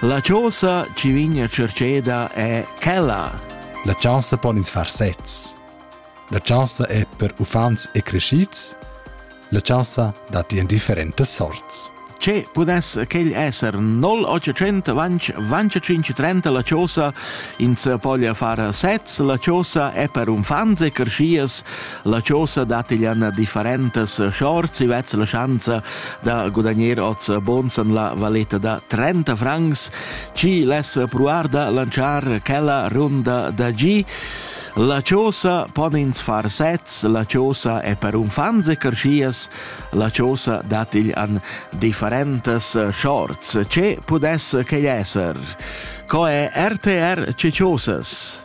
La chosa chi vegna cercheda è quella. La chaussa pon ins far sezs. La chaussa è per uffants e crescids. La chaussa dat in differentas sorts. Che pudess quel esser 0800 vanch vanciacinch 30 la chosa ins poglia far sez la chosa è per unfants e crescias La chosa dat igl an differentas shorts e vez la schanza da gudagnir oz bons an la valeta da 30 francs, ci less pruar da lanciar quella runda da gi. La chosa pon ins far sets, la chosa è per unfants e carschias, la chosa dat igl an differentas shorts. Ce pudess che esser? Co è RTR ce chosas?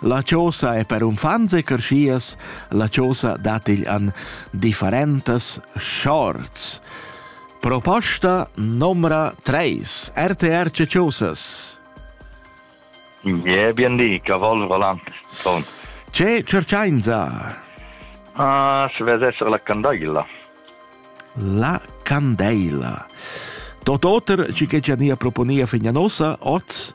La chosa è per uffants e creschias, la chosa dat igl an differentas shorts. Proposta numra 3 RTR Chosas. Yeah, bien di, cavallo volante. Con. Ce cercainza? Ah, se vede essere la candeilla. La candeilla. Tot oter ci che nia proponia figna nosa, oz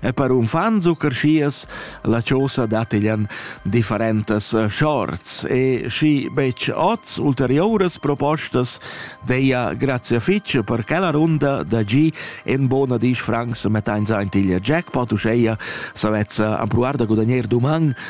E per unfants u carschias la chosa dattiglian differentas shorts e schi betg oz ulterioras propostas deia grazia fitg per quella runda da gi en bona dis francs mettains aintiglia jackpot uscheia savezza ampruar da gudagner duman